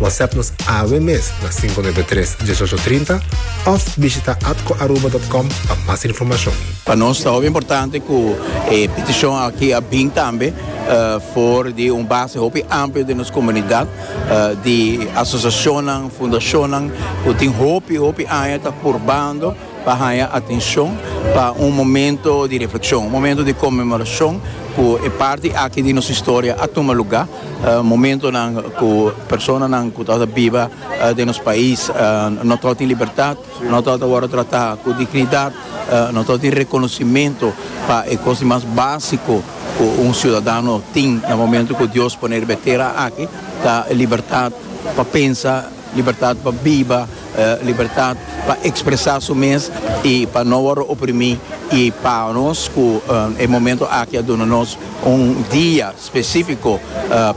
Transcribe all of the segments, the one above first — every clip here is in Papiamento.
WhatsApp nos awe mes na 593 1830 of bishita atcoaruba.com pa mas informacion. Pa nos ta hopi importante cu e peticion aki a bin tambe for di un base hopi amplio den nos comunidad di asociacionnan, fundacionnan cu tin hopi, hopi aña ta purbando. pa haña atencion pa un momento di reflexion, un momento di conmemoracion cu e parti aki di nos historia a tuma lugar, momentonan cu personanan cu ta biba den nos pais no ta tin libertad, no ta worde trata cu dignidad, no ta tin reconocimento pa e cosnan mas basico cu un ciudadano tin na momento cu Dios ponel riba e tera aki ta libertad pa pensa, Libertat pa biba, libertat pa ekspresá su mes i pa no wòrdu oprimí. I pa nos ku e momentu aki a duna nos un dia spesífiko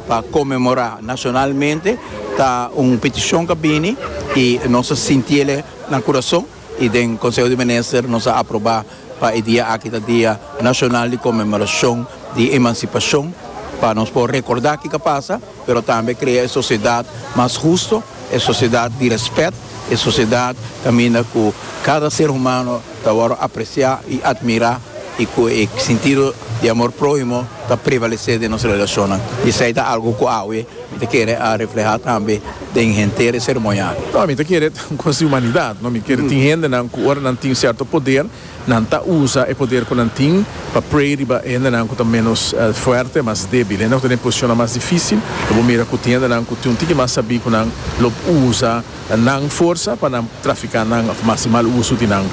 pa konmemorá nashonalmente ta un petishon ku a bini i nos ta sinti el na kurason. y den Conseho di Minister nos a aproba pa e dia aki ta Dia Nacional di Conmemoracion di Emancipacion, pa nos por recorda kico a pasa, pero tambe crea e sociedad mas husto, e sociedad di respet, e sociedad caminda cu cada ser humano ta worde aprecia y admira y cu e sentido di amor prohimo ta prevalece den nos relacionnan, y esey ta algo cu awe Mi ta kere a refleha tambe den henter e seremonia. No, mi ta kere un cos di humanidad, no. Mi kere tin hendenan cu ora nan tin cierto poder, nan ta usa e poder cu nan tin pa prey riba e hendenan cu ta menos fuerte, mas debil. Hendenan cu ta den posicionnan mas dificil, lo bo mira cu tin hendenan cu tin un tiki mas sabi cu nan lo usa nan forsa pa nan trafica nan of mas di mal uso di nan.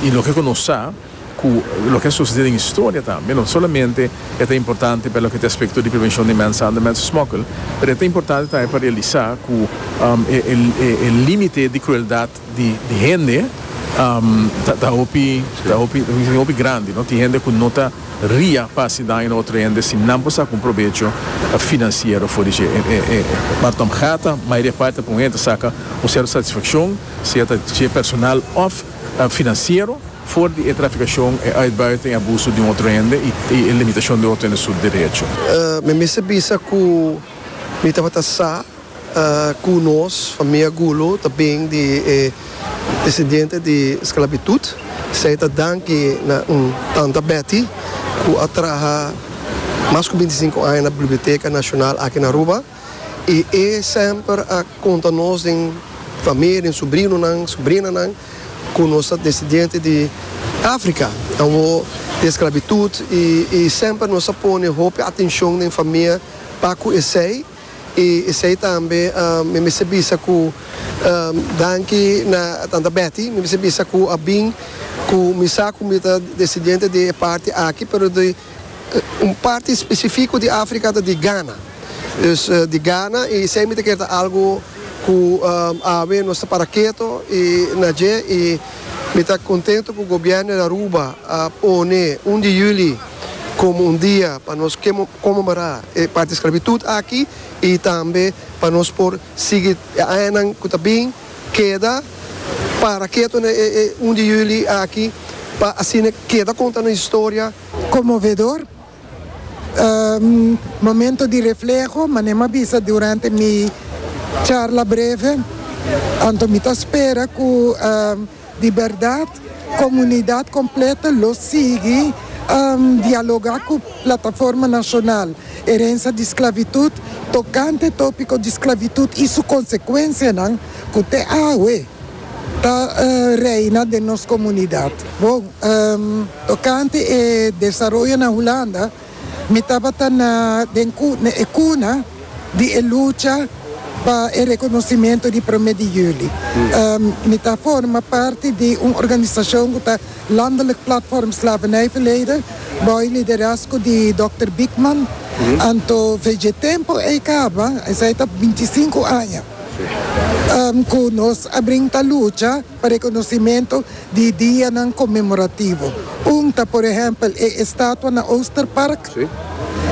Y loke cu nos sa. cu loke a sucede den historia tambe, no solamente e ta importante pa loke ta aspecto di prevencion di mensahandel y mensensmokkel, pero e ta importante tambe pa realisa cu e limite di crueldad di hende ta hopi ta hopi ta hopi grandi, no tin hende cu no ta ria pa haci daño na otro hende si nan por saca un probecho financiero for di dje, e Bartom Gata mayoria parti ta pon hende ta saca un cierto satisfaccion, sea ta dje personal of. Financiero, for di e traficacion, e uitbuiten, e abuso di un otro hende y e limitacion di otro hende su derecho. Mi mester bisa cu mi tabata sa cu nos famia Gulu ta bin di e descendiente di sclavitud. Esey ta danki na un tanta Betty cu a traha mas cu binti sinku aña na Biblioteca Nacional aki na Aruba. I e semper a konta nos den famia, den subrinonan, subrinanan ku nos ta desidiente di Afrika, awor di esklabitut i i semper nos a pone hopi atenshon den famia pa ku esei i esei tambe mi mester bisa ku danki na tanta Betty, mi mester bisa ku a bin ku mi sa ku mi ta desidiente di e parti aki pero di. Un parti spesifiko di Afrika ta di Gana. Dus di Gana i esei mi ta kier ta algu ku awe nos ta para keto i na dje i mi ta kontentu ku gobièrnu di Aruba a pone un di yüli komo un dia pa nos konmemorá e parti sklavitut aki i tambe pa nos por sigui e añanan ku ta bin. Keda para ketu na e e un di yuli aki pa asina keda konta nos historia. Conmovedor. Un momento di refleho, manera mi a bisa durante mi charla breve, anto mi ta spera cu. Di bèrdat, komunidat kompleto lo sigui dialogá ku Plataforma Nashonal Herensia di Sklavitut tokante tópiko di sklavitut i su konsekuensianan ku te awe ta reina den nos komunidat. Bon, tokante e desaroyo na Hulanda. Mi tabata na den e cuna di e lucha pa e reconocimento di Prome di Juli. Mi ta forma parti di un organisacion cu ta Landelijk Platform Slavernijverleden bao e liderazgo di Dokter Biekman. Anto for dje tempo ei caba, esei ta bintisinco aña cu nos a brinta lucha. pa rekonosementu di dianan konmemorativo. Un ta por ehèmpel e estatua na Oosterpark.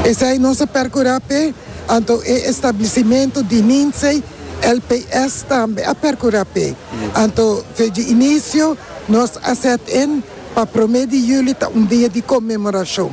Esei nos a perkurá p'e, anto e establisimentu di Ninzei LPS tambe a perkurá p'e. Anto feji inisio nos a sèt in pa promé di juli ta un dia di konmemorashon.